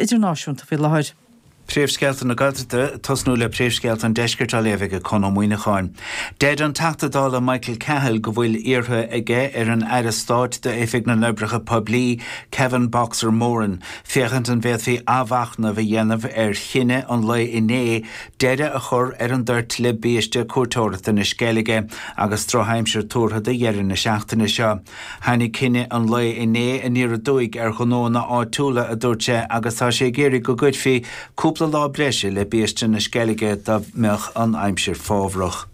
idirnáisiúnta faoi láthair. Príomhscéalta na Gaeltachta, tosnú le príomhscéalta an deiscirt á léamh aige Conn Ó Muíneacháin. Deir an Teachta Dála Michael Cahill go bhfuil iarrtha aige ar an Aire Stáit d'Oifig na nOibreacha Poiblí, Kevin 'Boxer' Moran, féachaint an bhféadfaí athmhachnamh a dhéanamh ar chinneadh an lae inné deireadh a chur ar an dtoirt le biaiste cuairteoireachta na Sceilge agus drochaimsir tuartha do dheireadh na seachtaine seo. Tháinig cinneadh an lae inné aniar aduaidh ar ghnóanna áitiúla, a dúirt sé, agus tá sé ag iarraidh go gcuirfí cúpla lá breise le biaiste na Sceilge dá mbeadh an aimsir fábhrach.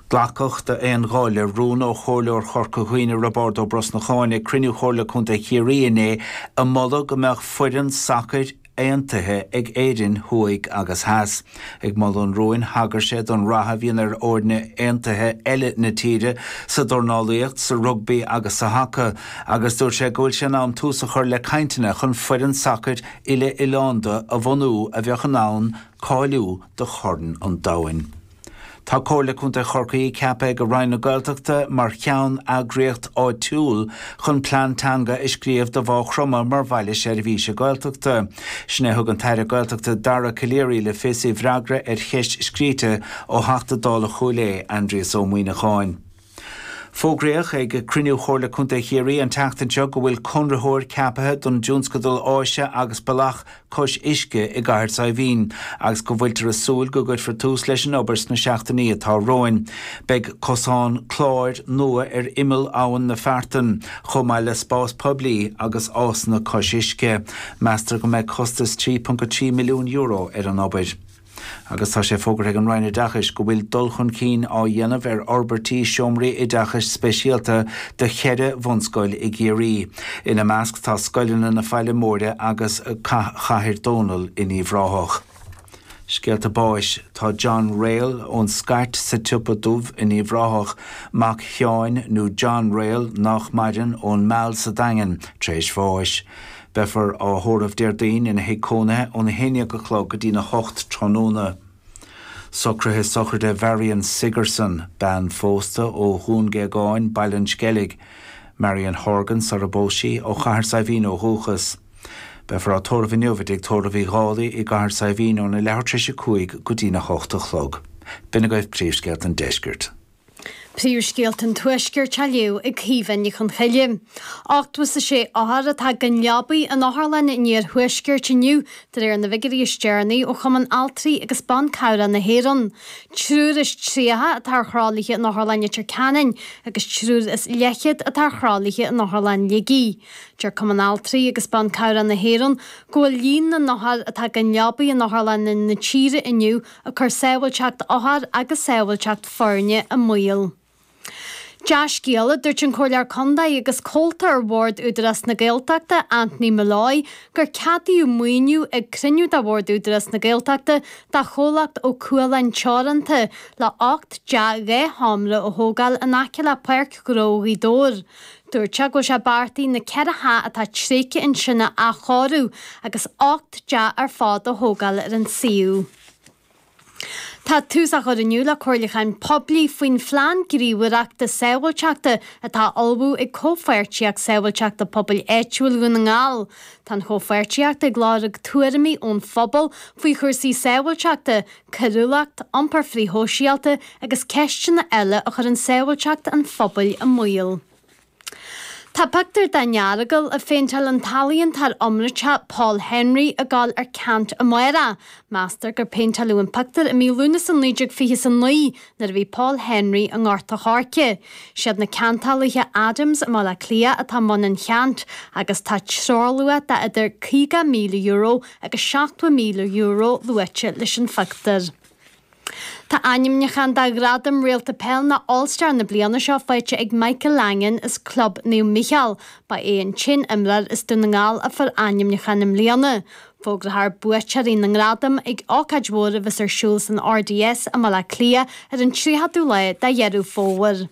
Glacadh d'aon ghuth le rún ó Chomhairleoir Chorca Dhuibhne Roibeárd Ó Brosnacháin ag cruinniú Chomhairle Contae Chiarraí inné ag moladh go mbeadh foireann sacair, aontaithe ag Éirinn thuaidh agus theas. Ag moladh an rúin, thagair sé don rath a bhíonn ar fhoirne aontaithe eile na tíre sa dornálaíocht, sa rugbaí agus sa haca agus dúirt sé go bhfuil sé in am tús a chur le cainteanna chun foireann sacair uile-oileánda a bhunú a bheadh in ann cáiliú do Chorn an Domhain. Tá Comhairle Contae Chorcaí ceaptha ag Roinn na Gaeltachta mar cheann eagraíocht áitiúil chun plean teanga a scríobh do Mhaigh Chromtha mar Bhaile Seirbhíse Gaeltachta. Sin é a thug an tAire Gaeltachta Dara Calleary le fios i bhfreagra ar cheist scríte ó Theachta Dála Chúil Aodha, Aindrias Ó Muíneacháin. Fógraíodh ag cruinniú Chomhairle Contae Chiarraí an tseachtain seo go bhfuil conraitheoir ceapaithe don dtionscadal áise agus bealach cois uisce i gCathair Saidhbhín agus go bhfuiltear ag súil go gcuirfear tús leis an obair sna seachtainí atá romhainn. Beidh cosán cláir nua ar imeall Abhann na Feartan, chomh maith le spás poiblí agus ásanna cois uisce. Meastar go mbeidh costas €3.3 milliún ar an obair. agus tá sé fógartha ag an Roinn Oideachais go bhfuil dul chun cinn á dhéanamh ar fhorbairtí seomraí oideachais speisialta do cheithre bhunscoil i gCiarraí, ina measc tá scoileanna na Faille Móire agus Chathair Dónaill in Uíbh Ráthach. Scéalta báis Tá John Ryle, ón Scairt sa tSiopa Dubh in Uíbh Ráthach, mac Sheáin nó John Ryle, nách maireann, ón Meall sa Daingean, tréis bháis. Beifear á thórramh Déardaoin ina thigh cónaithe óna haon déag a chlog go dtína hocht tráthnóna. Socruithe sochraide Mharion Sigerson, bean phósta ó Dhún Géagáin, Baile an Sceilg. Marion Horgan, sarar phós sí, ó Chathair Saidhbhín ó dhúchas. Beifear á tórramh inniu i dTigh Tórraimh Uí Dhálaigh i gCathair Saidhbhín óna leathuair tar éis a cúig go dtína hocht a chlog. B'in agaibh príomhscéalta an deiscirt. Príomhscéalta an Tuaiscirt á léamh ag Caoimhe Ní Chonchoille. Ochtó is a sé othar atá gan leabaidh in otharlanna an iarthuaiscirt inniu de réir na bhfigiúirí is deireanaí ó Chumann Altraí agus Ban Cabhrach na hÉireann. Triúr is tríocha atá ar thralaithe in Otharlann Leitir Ceanainn agus triúr is leathchéad atá ar thralaithe in Otharlann Shligigh. Deir Cumann Altraí agus Ban Cabhrach na hÉireann go bhfuil líon na n-othar atá gan leabaidh in otharlanna na tíre inniu Ag cur sábháilteacht othar agus sábháilteacht foirne i mbaol. Dea-scéal, a dúirt an Comhairleoir Contae agus comhalta ar Bhord Údarás na Gaeltachta, Anthony Molloy, gur ceadaíodh maoiniú ag cruinniú de Bhord Údarás na Gaeltachta do chomhlacht Ó Cualann Teoranta le 8 dteach dhá sheomra a thógáil in aice le Páirc Ghnó Ghaoth Dobhair. Dúirt sé go bhfuil sé beartaithe na ceithre theach atá tréigthe ansin a athchóiriú agus ocht dteach ar fad a thógáil ar an suíomh. Tá tús á chur inniu le comhairliúchán poiblí faoin phlean gníomhaireachta sábháilteachta atá á ullmhú ag Comhpháirtíocht Sábháilteachta Pobail Áitiúil Dhún na nGall. Tá an chomhpháirtíocht ag lorg tuairimí ón phobal faoi chúrsaí sábháilteachta, coiriúlacht, iompar frithshóisialta agus ceisteanna eile a chuireann sábháilteacht an phobail i mbaol. Tá pictiúr den Earagail, a phéinteáil an t-ealaíontóir iomráiteach Paul Henry, ag gabháil ar ceant amárach. Meastar gur péinteáladh an pictiúr i mí Lúnasa 1929, nuair a bhí Paul Henry i nGort a' Choirce. Siad na ceantálaithe Adams i mBaile Átha Cliath atá i mbun an cheant agus tá treoirluach de idir €50,000 agus €70,000 luaite leis an phictiúr. Tá ainmniúchán do ghradam Réalta Peil na All-Star na bliana seo faighte ag Michael Langan as club Naomh Mícheál. Ba é an t-aon imreoir as Dún na nGall a fuair ainmniúchán i mbliana. Fógrófar buaiteoirí na ngradam ag ócáid mhór a bheas ar siúl san RDS i mBaile Átha Cliath ar an 30ú lá de Dheireadh Fómhair.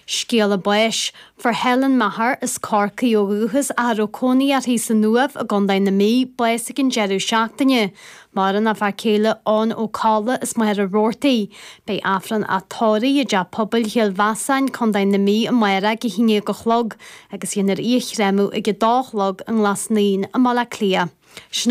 Scéala báis. Fuair Helen Maher as Corcaigh ó dhúchas a raibh cónaí uirthi san Uaimh i gContae na Mí, bás ag an deireadh seachtaine. Maireann a fear céile Eoin Ó Colla as Machaire Rabhartaigh. Beidh Aifreann a tórraimh i dTeach Pobail Chill Mheasáin, Contae na Mí amárach ag a haon déag a chlog agus déanfar í a chréamadh ag a dó a chlog i nGlas Naíon i mBaile Átha Cliath.